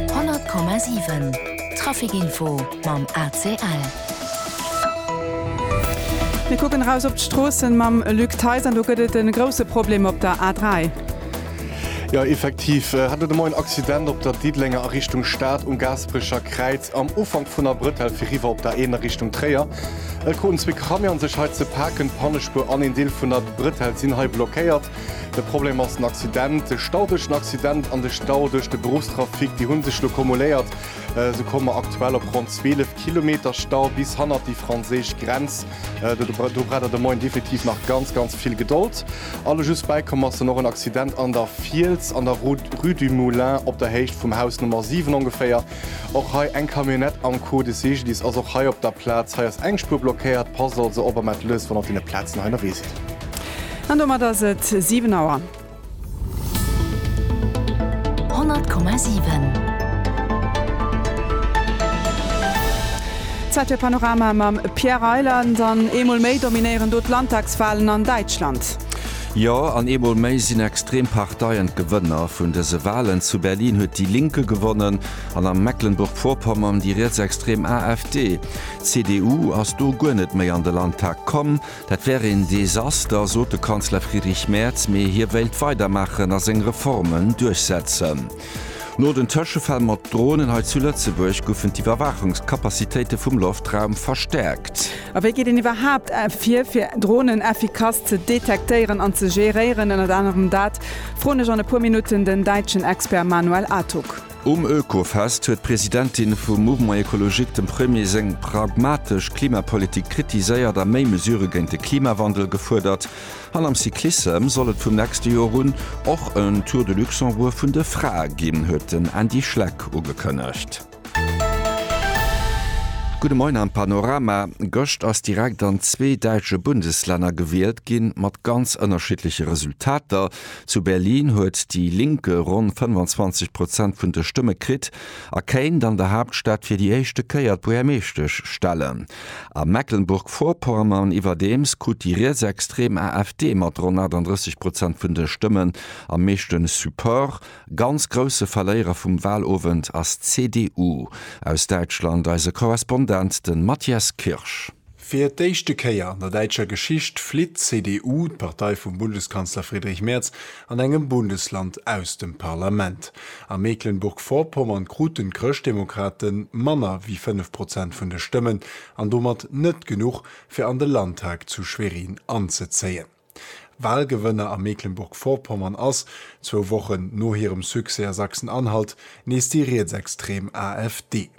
100,7 Trafic-Info mam ACL. Mir kucken eraus op d'Stroossen mam Luc Theis an do gëtt et en grousse Problem op der A3. Jo effektiv hat et elo en Accident op der Diddelenger a Richtung Stad um Gaasperecher Kräiz am Ufank vun der Brëtell fir riwwer op der Eener Richtung Tréier. Et kruten zwee Camionen sech hei ze paken. D'Pannespuer an een Deel vun der Brëtell sinn hei blockéiert. De Problem ass den Accident, de Stau duerch den Accident an de Stau duerch de Beruffstrafic. Déi hu sech elo kumuléiert. Esou komme mer aktuell op ronn 12 Kilometer Stau bis hannert déi franséisch Grenz. Do braucht Der de Moien definitiv nach ganz, ganz vill Gedold. Alle just bäikomm ass dann och en Accident an der Fiels an der Rue du Moulin op der Héicht vum Haus Nummer 7 ongeféier. Och hei eng Camionnette am Coup de Sigilis ass och hei op der Plaz. Hei ass eng Spuer blockéiert. Passt also op a mellt lech, wann der op deene Plazen hei ënnerwee sidd. An domat ass et 7 Auer. 100,7. Zäit fir Panorama mam Pierre Reyland. An eemol méi dominéieren do d'Landtagswalen an Däitschland. Jo, an eemol méi sinn extrem Parteien d'Gewënner vun dëse Walen. Zu Berlin huet Die Linke gewonnen an a Mecklenburg-Vorpommern déi rietsextrem AfD. D'CDU ass do guer net méi an de Landtag komm. Dat wär een Desaster, sot de Kanzler Friedrich Merz, mee hie wéilt weidermaachen a seng Reformen duerchsetzen. No den Tëschefäll mat Dronen hei zu Lëtzebuerg goufen d'Iwwerwaachungskapazitéite vum Loftraum verstäerkt. A wéi geet een iwwerhaapt vir, fir Dronen effikass ze detektéieren an ze géréieren? Ënnert anerem dat froen ech an e puer Minutten den däitschen Expert Manuel Atug. Um Oekofest huet d'Presidentin vum Mouvement Ecologique dem Premier seng pragmatesch Klimapolitik kritiséiert a méi Mesure géint de Klimawandel gefuerdert. An am Cyclissem soll et vum nächste Joer un och en Tour de Luxembourg vun de Frae ginn, huet den Andy Schleck ugekënnegt. Gudde Moien am Panorama. Gëscht ass direkt an zwee däitsche Bundeslänner gewielt ginn, mat ganz ënnerschiddleche Resultater. Zu Berlin huet déi Linke ronn 25 Prozent vun de Stëmme kritt a kéint an der Haaptstad fir déi éischte Kéier d'Buergermeeschtesch stellen. A Mecklenburg-Vorpommern iwwerdeems krut déi rietsextrem AfD mat ronn 38 Prozent vun de Stëmmen am meeschte Support. Ganz grousse Verléierer vum Wahlowend ass d'CDU. Aus Däitschland eise Korrespondent, de Matthias Kirsch. Fir d'éischte Kéier an der däitscher Geschicht flitt d'CDU, d'Partei vum Bundeskanzler Friedrich Merz, An engem Bundesland aus dem Parlament. A Mecklenburg-Vorpommern kruten d'Chrëschtdemokrate manner wéi 5 Prozent vun de Stëmmen an domat net genuch, fir an de Landtag zu Schwerin anzezéien. Walgewënner a Mecklenburg-Vorpommern ass, zwou Wochen no hirem Succès a Sachsen-Anhalt, nees déi rietsextrem AfD.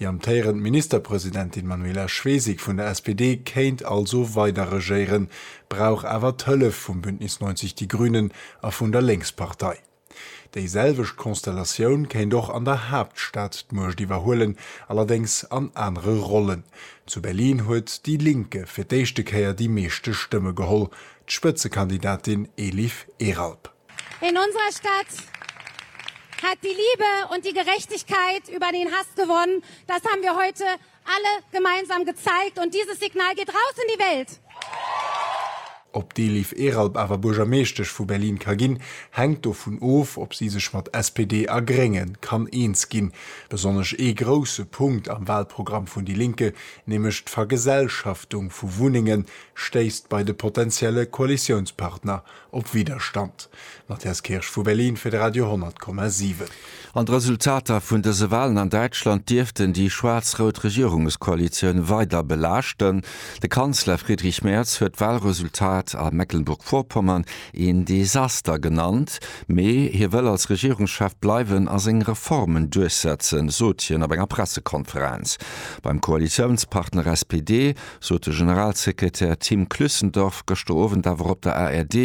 Déi amtéierend Ministerpresidentin Manuela Schwesig vun der SPD kéint also weider regéieren, brauch awer d'Hëllef vum Bündnis 90 Die Grünen a vun der Lénkspartei. Déi selwecht Konstellatioun kéint och an der Haaptstad d'Muecht iwwerhuelen, allerdéngs an anere Rollen. Zu Berlin huet déi Linke fir d'éischte Kéier déi meeschte Stëmme geholl, d'Spëtzekandidatin Elif Eralp. In unserer Stadt hat die Liebe und die Gerechtigkeit über den Hass gewonnen. Das haben wir heute alle gemeinsam gezeigt und dieses Signal geht raus in die Welt. Ob d'Eliv Eralp awer Buergermeeschtesch vu Berlin ka ginn, hänkt dovun of, ob si sech mat SPD a Grénge kann eens ginn. Besonnesch ee grousse Punkt am Walprogramm vun déi Linke, nämlech d'Vergesellschaftung vu Wunnengen, stéisst bei de potentielle Koalitiounspartner Op Widderstand. Matthias Kirsch vu Berlin fir de Radio 10,7. An d'Resultater vun dëse Walen an Däitschland dierften déi schwaarz-rout Regierungskoalitioun weider belaaschten. De Kanzler Friedrich Merz huet d'Walresultat a Mecklenburg-Vorpommern een Desaster genannt. Mee hie wëll als Regierungschef bleiwen a seng Reformen duerchsetzen, sot hien op enger Pressekonferenz. Beim Koalitiounspartner SPD sot de Generalsekretär Tim Clüssendorf gëschter Owend awer op der ARD.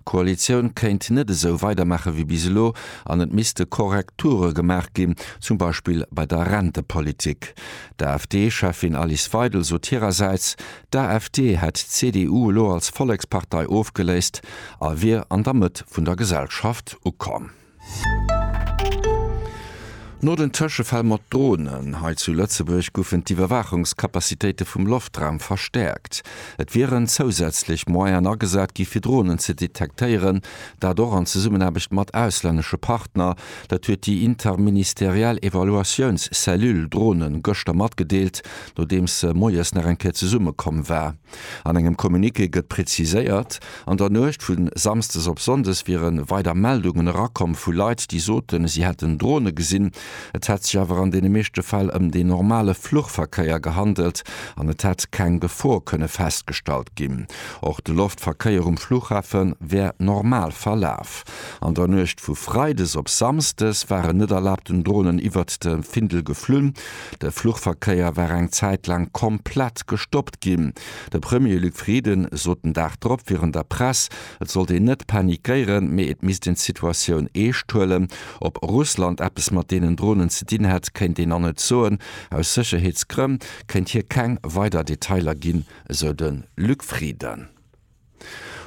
D'Koalitioun kéint net esou weidermaache wéi bis elo an et misste Korrekture gemaach ginn, zum Beispill bei der Rentepolitik. D'AfD-Cheffin Alice Weidel sot hirersäits, d'AfD hätt d'CDU elo als Vollekspartei ofgeléist a wier an der Mëtt vun der Gesellschaft ukomm. No den Tëschefäll mat Dronen hei zu Lëtzebuerg goufen d'Iwwerwaachungscapacitéite vum Loftraum verstäerkt. Et wieren zousätzlech Moyenen agesat gi fir Dronen ze detektéieren, dat och an Zesummenaarbecht mat auslännesche Partner. Dat huet déi interministeriell Evaluatiounscellule Drone gëschter matgedeelt, nodeems se moies nach eng Kéier zesummekomm war. An engem Communiqué gëtt preziséiert, an der Nuecht vu Samsdes op Sonndes wiere weider Meldungen erakomm vu Leit, déi soten, si hätten Drone gesinn. Et hätt sech awer an deene meeschte Fäll ëm dee normale Fluchverkéier gehandelt an et hätt keng Gefor kënne festgestallt ginn. Och de Loftverkéier um Fluchhafe wär normal verlaf. An der Nuecht vu Freides op Samsdes waren net erlaabten Dronen iwwert de Findel geflunn. De Fluchverkéier war eng Zäit laang komplett gestoppt ginn. De Premier Luc Frieden sot den Dag drop virun der Press, et sollt een net panikéieren, mee et misst een d'Situatioun eescht huelen. Ob Russland eppes mat deenen Dronen ze dinn hätt, kéint een nach net soen. Aus Sécherheetsgrënn kéint hie keng weider Detailer ginn, esou de Luc Frieden.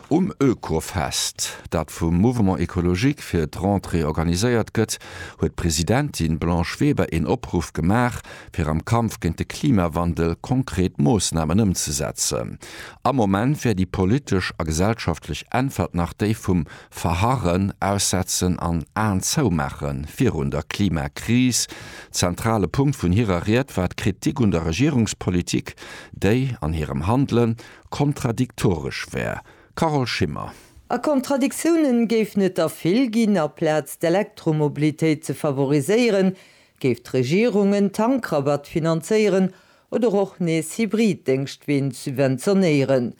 Um Oekofest, dat vum Mouvement Ecologique fir d'Rentrée organiséiert gëtt, huet d'Presidentin Blanche Weber een Opruff gemaach, fir am Kampf géint de Klimawandel konkret Moossnamen ëmzesetzen. Am Moment wär déi politesch a gesellschaftlech Äntwert nach déi vum Verharren, Aussetzen an Aen zou maache virun der Klimakris. Zentrale Punkt vun hirer Ried war d'Kritik un der Regierungspolitik, déi an hirem Handelen Kontradiktoresch wär. Carole Schimmer. A Kontradiktiounen géifen et der vill ginn. Aplaz d'Elektromobilitéit ze favoriséieren, géif d'Regierung en Tankrabatt finanzéieren oder och nees Hybrid-Déngschtween subventionéieren.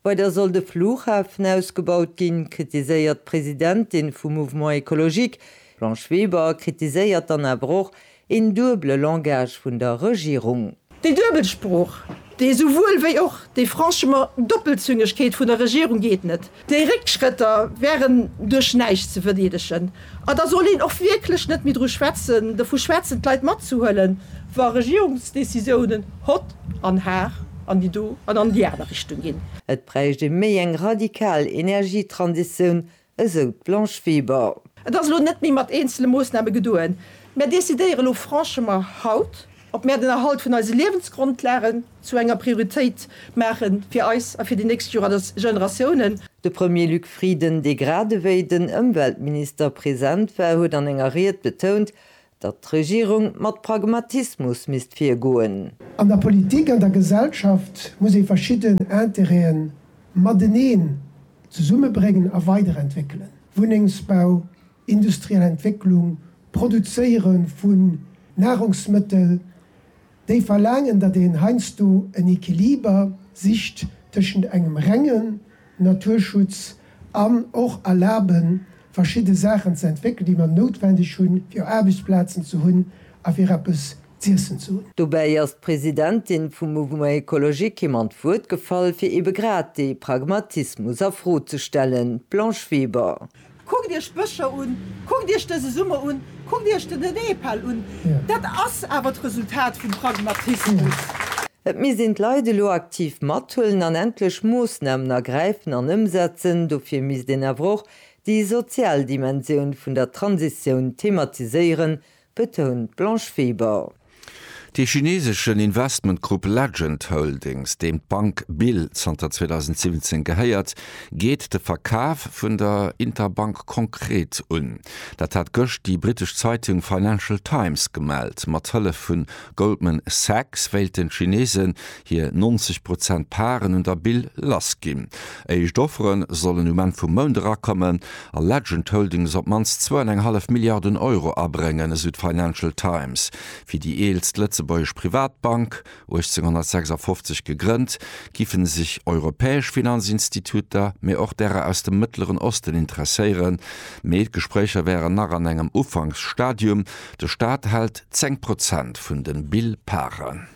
Weider soll de Flughafen ausgebaut ginn, kritiséiert d'Presidentin vum Mouvement Ecologique. D'Blanche Weber kritiséiert dann awer och, Een duebele Langage vun der Regierung. Déi duebel Sprooch, dee souwuel wéi och déi franchement Doppelzüngegkeet vun der Regierung geet net. Déi Réckschrëtter wären duerch näischt ze verdeedegen. A da soll een och wierklech net méi dru schwätzen, dovu schwätzen, d'Leit matzehuelen, wa Regierungsdécisiounen hott an har an déi do an an déi aner Richtung ginn. Et bräicht ee méi eng radikal Energietransitioun, esou d'Blanche Weber. Et ass elo net méi mat eenzele Moossname gedoen. Mär decidéiere lo franchement haut, ob mär den Erhalt vun eise Liewensgrondlagen zu enger Prioritéit maache fir eis a fir déi nächst Generatiounen. De Premier Luc Frieden, dee gradewéi den Ëmweltminister present war, huet an enger Ried betount, Datt d'Regierung mat Pragmatismus misst virgoen. An der Politik, an der Gesellschaft muss ee verschidden Interêten mateneen zesummebréngen a weiderentwéckelen, Wunnengsbau, industriell Entwécklung, Produzéiere vu Nahrungsmëttel, déi verlaangen, datt een heiansdo en Equiliber sicht tëschent engem rengen Naturschutz an och erlaben, verschidde Saachen ze entwéckelen, déi mer noutwendeg hunn, fir Aarbechtsplazen ze hunn a fir eppes z'iessen ze hunn. Dobäi ass d'Presidentin vum Mouvement Ecologique him an d'Wuert gefall, fir eebe grad dee Pragmatismus a Fro ze stellen. D'Blanche Weber. Kuckt iech d'Bëscher un, kuckt iech dëse Summer un, kuckt iech den Nepal un. Dat ass awer d'Resultat vum Pragmatismus. Et misst een d'Leit elo aktiv mathuelen an endlech Moossnamen ergräifen an ëmsetzen. Dofir misst een awer och déi sozial Dimensioun vun der Transitioun thematiséieren, betount d'Blanche Weber. De chineeseschen Investmentgrupp Legend Holdings, deem d'Bank Bill zanter 2017 gehéiert, geet de Verkaf vun der Interbank konkret un. Dat hat gëscht déi britesch Zeitung Financial Times gemellt. Mat Hëllef vu Goldman Sachs wéilten d'Chineesen hir 90 Prozent Parten un der Bill lassginn. Éischt Offere sollen um Enn vum Mount erakommen a Legend Holdings op d'mannst zwou an eng hallef Milliarden Euro abréngen, esou d'Financial Times. Fir déi eelst lëtzebuergesch Privatbank, 1856 gegrënnt, giffe sech europäesch Finanzinstituter, mee och därer aus dem Mëttleren Osten interesséieren. Mee d'Gespréicher wären nach an engem Ufanksstadium. De Staat hält 10 Prozent vun de Bill Parten.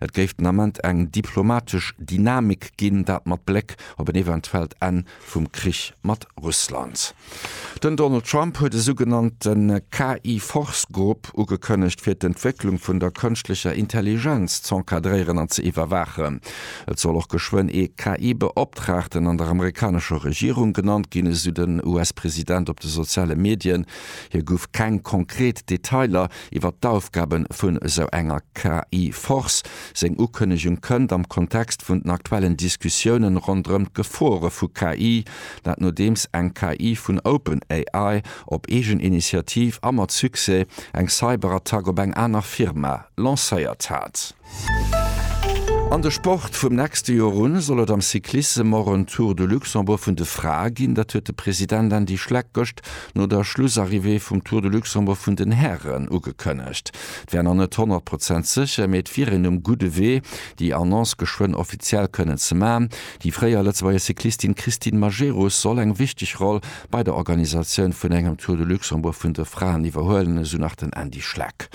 Et géif den Ament eng diplomatesch Dynamik ginn, dat mat Bléck op en eventuellt Enn vum Krich mat Russland. Den Donald Trump huet e sougenannte KI-Force-Grupp ugekënnegt, fir d'Entwécklung vun der kënschtlecher Intelligenz z'encadréieren an ze iwwerwaachen. Et soll och geschwënn ee KI-Beoptraagten an der amerikanescher Regierung genannt ginn, esou den US-President op de soziale Medien. Hie gouf keng konkret Detailer Iwwer d'Aufgaben vun esou enger KI-Force. Seng Ukënnegung kënnt am Kontext vun den aktuellen Diskussiounen ronderëm d'Gefore vu KI, dat nodeems eng KI vun OpenAI op eegen Initiativ a mat Succès eng Cyberattack op eng aner Firma lancéiert hat. An de Sport, Vum nächste Joer u soll et am Cyclissem och en Tour de Luxembourg vun de Frae ginn. Dat huet de President Andy Schleck gëscht no der Schlussarrivée vum Tour de Luxembourg vun den Hären ugekënnegt. Et wär nach net honnert Prozent sécher, mee et wier een um gudde Wee, déi Annonce geschwënn offiziell kënnen ze maachen. Déi fréier Lëtzebuerger Cyclistin Christine Majerus soll eng wichteg Roll bei der Organisatioun vun engem Tour de Luxembourg vun de Fraen iwwerhuelen, esou nach den Andy Schleck.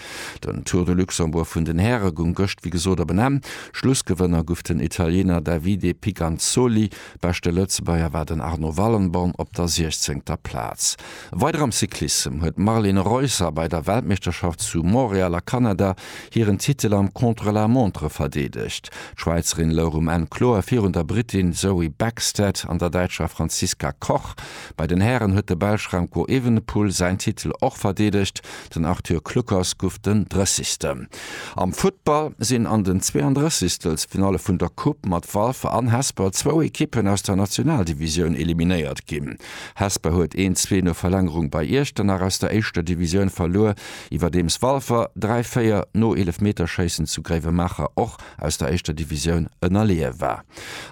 Den Tour de Luxembourg vun den Häre gung gëscht wéi gesot op en Enn. Schlussgewënner guff den Italiener Davide Piganzoli, beschte Lëtzebuerger war den Arno Wallenborn op der siechzéngter Plaz. Weider am Cyclissem huet d'Marlene Reusser bei der Weltmeeschterschaft zu Montréal a Kanada hiren Titel am Contre-la-montre verdeedegt. D'Schwäizerin louch um Enn kloer virun der Brittin Zoe Bäckstedt an der Däitscher Franziska Koch. Bei den Hären huet de Belsch Remco Evenepoel säin Titel och verdeedegt. Den Arthur Kluckers guff den Drëssigsten. Am Futtball sinn an den 32 Finalle vun der Coupe mat Walfer an Hesper zwou Ekippen aus der Nationaldivisioun eliminéiert ginn. Hesper huet 1, 2 no Verlängerung bei Iechternach aus der éischter Divisioun verluer, iwwerdeems Walfer 3, 4 no Eelefmeterschéissen zu Gréiwemaacher och aus der éischter Divisioun ënnerleeë war.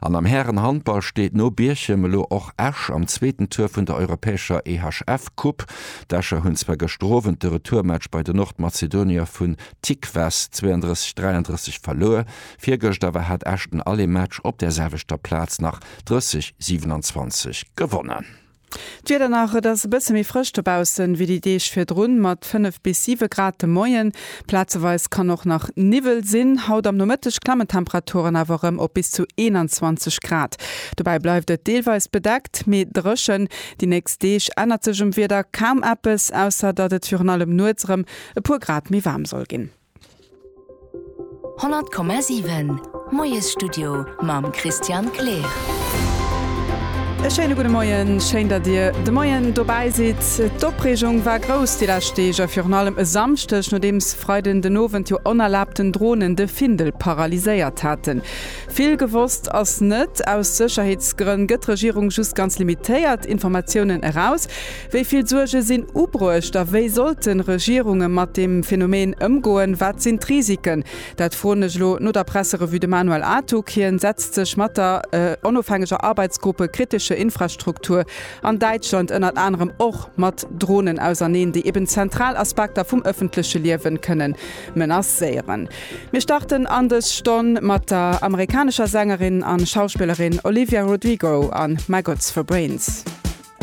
An am Härenhandball steet no Bierchem elo och Esch am zweeten Tour vun der europäescher EHF-Coupe. D'Escher hunn zwar gëschter Owend de Retourmatch bei de Nordmazedonier vun Tikvas 32, 33 verluer, virgëscht awer hat Esch den Allemaatch op där selwechter Plaz nach 30, 27 gewonnen. D'Wieder nach, Et ass e bësse méi frësch dobaussen, wéi déi Deeg virdrun, mat 5 bis 7 Grad de Moien. Plazeweis kann och nach Niwwel sinn. Haut am Nomëtteg klammen d'Temperaturen awer erëm op bis zu 21 Grad. Dobäi bleift et deelweis bedeckt, mee dréchen. Déi nächst Deeg ännert sech um Wieder kaum eppes, ausser datt et virun allem nuets erëm e puer Grad méi waarm soll ginn. 100,7 Moiesstudio mam Christian Kleer. E schéine gudde Moien, schéin datt Dir de Moien dobäi sidd. D'Opreegung war grouss déi lescht Deeg a virun allem e Samschdeg, nodeems Freiden den Owend jo onerlaabten Dronen de Findel paralyséiert haten. Vill gewosst ass net. Aus Sécherheetsgrënn gëtt d'Regierung just ganz limitéiert Informatiounen eraus. Wéi vill Suerge sinn ubruecht a wéi sollten Regierunge mat deem Phänomen ëmgoen? Wat sinn d'Risiken? Dat froen ech elo no der Presserevue de Manuel Artug. Hien setzt sech mat der onofhängeger Arbeitsgruppe Kritische Infrastruktur an Däitschland ënnert anerem och mat Dronen auserneen, déi eben zentral Aspekter vum ëffentleche Liewe kënnen menacéieren. Mir starten an dës Stonn mat der amerikanescher Sängerin an Schauspillerin Olivia Rodrigo a My Gods for Brains.